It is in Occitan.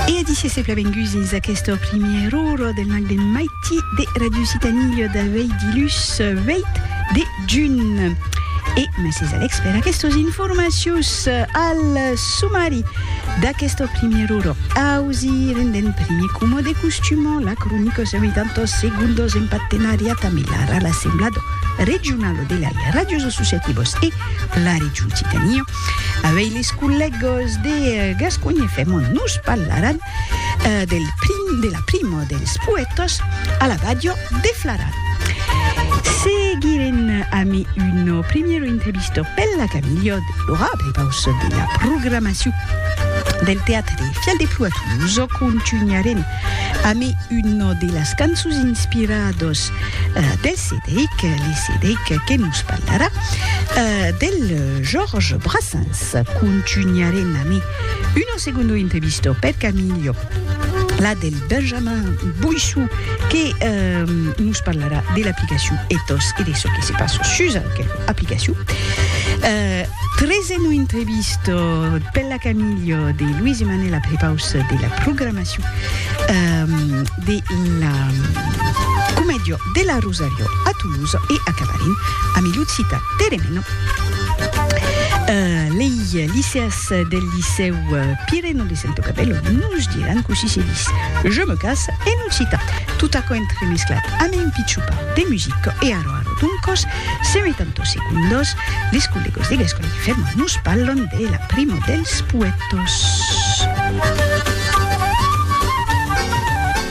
E a disse se plavenguts dins aqueste primièr ora del nag de maiti de Radio Citanilha d'aveir dilhus 8 de junh. E mèsi Alex per aquestos informacius al sumari d'aquesta primièr ora. Ausi rendent primi coma de costuma la cronica se meitan tos segundos en partenariat amb l'ARAL Assemblado Regionalo de lei Radios Associativos e la Region Citanilha. Avei les collègues de Gasconha fèmon nos parlaran del prim, de la prima dels poètas a la ràdio de Flaran. Seguirem ami una primièra entrevista per la Camilha de Lora, prepaus de la programacion del teatre Fial de Plou a Toulouse. Contunharem ami una de las cançons inspiradas dels Cedric, li Cedric que nos parlarà del Georges Brassens. Contunharem ami uno segundo intrevisto per Camillo, la del Benjamin Boissou que nos parlarà de l'aplicacion Ethos e de çò que se passa sus aquela aplicacion. Treseno intrevisto per la Camillo de Luis Emmanuel a prepaus de la programacion de la comèdia. De la Rosario a Toulouse e acabarem ami l'occita Teremeno. Lei liceas del licèu Pireno de Sento Cabello nos diràn cossí se dis Je me casse en occita. Tot aquò entremesclat ame un pichupa de music e aro aro doncos se metan tos secundos les collegos de Gasconha que fermant nos parlon de la primo dels poètos.